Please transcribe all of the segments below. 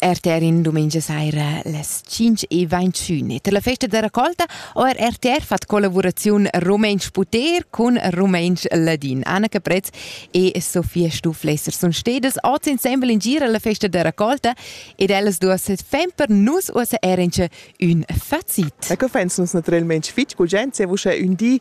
RTR in domenica sera las 5 e 21. Per la festa da raccolta ho RTR fatg collaboraziun Rumensch-Puter cun Rumensch-Ladin. Anna Caprez e Sofia Stuflesser sun stedas oz insembel in gira alla festa da raccolta ed ellas duas fan per nus uossa er ün facit. E co fans nus naturalmente fitg gugent, se vos ün di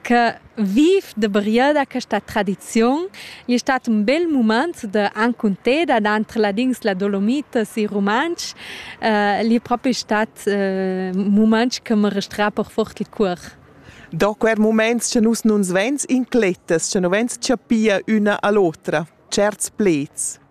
che viv de brieda questa tradizion è stato un bel moment de ancunteda entre ladins la dolomitas e romansch uh, è proprio stato uh, moment che mi restra per fort il cuor Da quer moments che nus nun svens inclettas, che non vens chapia una all'otra, certs plets.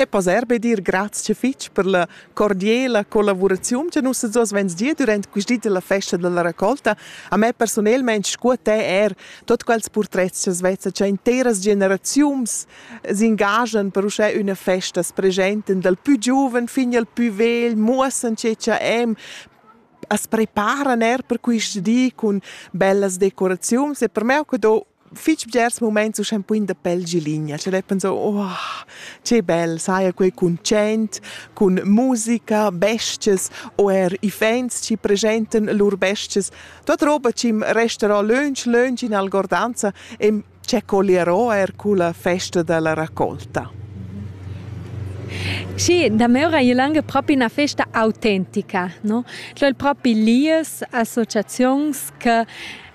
E poss er be dir grazia fitg per la cordiala collavuraziun che nus oz vens dir durant questi della festa della raccolta. A me personelmente scu a te er tot quels portrets che vezza che interas generaziuns s'ingagian per uschè üna festa s presenten dal pü giuven fin al pü vegl, muossan che cha em, as preparan er per questi di cun bellas decoraziuns e per me ho que do fich bgers mumaints uschè ün poin da pel giligna, cioè dai penso oh, che bel, saja quei cun tschent, cun musica, bestias o eir iffaints chi pregentan lur bestias. Tuot roba chi'm resterà lönch lönch in algordanza e che colierò eir culla festa da la raccolta. Schi, damora è lange propi una festa autentica, no? Cioè propi lies associazions che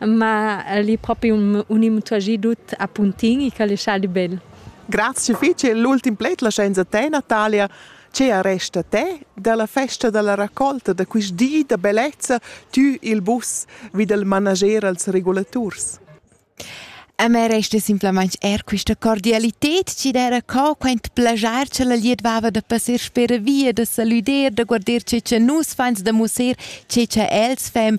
ma el è propi un, un immutuagì tut a puntin e che le sciali bel. Grazie fece l'ultim pled la scienza te Natalia che arresta te dalla festa dalla raccolta da quist di da bellezza tü il bus vid il manager als regulaturs. A me resta simplamente er questa cordialità ci d'era co quant plagiar ce la liedvava da passar spera via, da saluder, da guardar ce ce nus fans da musser, ce ce els fem